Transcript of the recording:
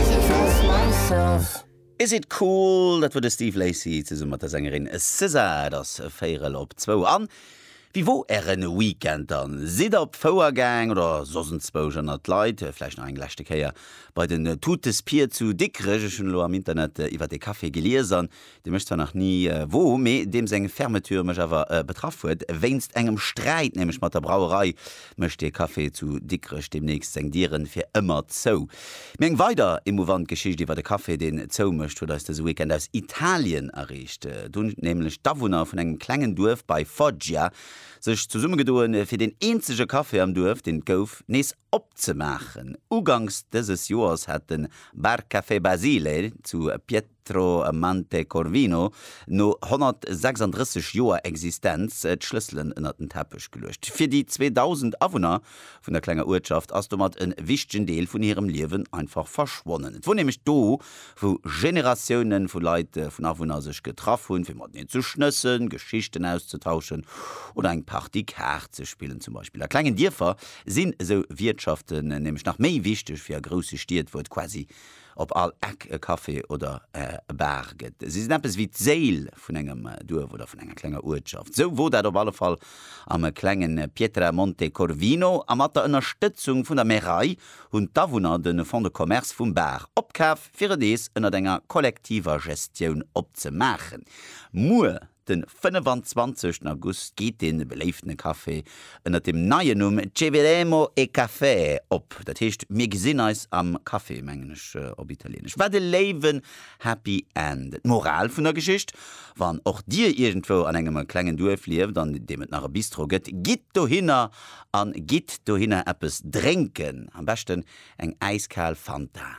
She dressed myself. Is It Cool? Dat wor de Steve Lacy zesumme mat der Sängerin SZA. Et ass véierel op zwou an wéi wor ären Weekend dann? Sidd der op d'Fouer gaang oder soss enzwousch ënnert d'Leit? Vläicht nach eng leschte Kéier bei den Totes Pied zu Dikrech? Ech hunn elo am Internet iwwert ee Café gelies an dee mech zwar nach ni woo, mee deem seng Fermeture mech awer betraff huet. Wéinst engem Sträit nämlech mat der Brauerei mécht dee Café zu Dikrech deemnächst seng Dieren fir ëmmer zou. Mee eng weider emouvant Geschicht iwwert e Café, deen zou mécht, huet eis dëse Weekend aus Italien erreecht. Do hunn nämlech d'Awunner vun engem klengen Duerf bei Foggia sech zesummegedoen, fir deen eenzege Café am Duerf, deen et gouf, nees Opzemaachen. Uganks dëses Joers hat de Bar Café Basile zu Pietromante Corvino no 136 Joer Existenz d'Schlësselen ënnert den Teppech geluecht. Fir déi 2.000 Awunner vun der klenger Uertschaft ass domat e wichtegen Deel vun hirem Liewen einfach verschwonnen. Et wor nämlech do, wou Generatiounen vu Leit, vun Awunner sech getraff hunn, fir mateneen ze schnëssen, Geschichten auszetauschen oder eng Partie Kaart ze spillen zum Beispill. A klengen Dierfer sinn esou Wiertschaften nämlech nach méi wichteg wéi a grousse Stied, wou et quasi op all Eck e Café oder e Bar gëtt. Si sinn eppes wéi d'Séil vun engem Duerf oder vun enger klenger Uertschaft. Esou wor dat op alle Fall am klengen Pietramonte Corvino a mat der Ënnerstëtzung vun der Märei hunn d'Awunner de Fonds de Commerce vum Bar opkaf fir et nees ënnert enger kollektiver Gestioun opzemaachen. Muer Den 25 August geet dee beléiftene Café ënnert dem neien Numm Ce vedemo e caffè op, dat heescht Mir gesinn eis am Café, mengen ech op Italieenesch. Wat e léiwen Happy End! D'Moral vun der Geschicht, Wann och Dir iergendwou an engem klengen Duerf lieft, an deem et nach e Bistro gëtt, gitt dohinner a gitt dohinner eppes drénken, am beschten eng äiskal Fanta.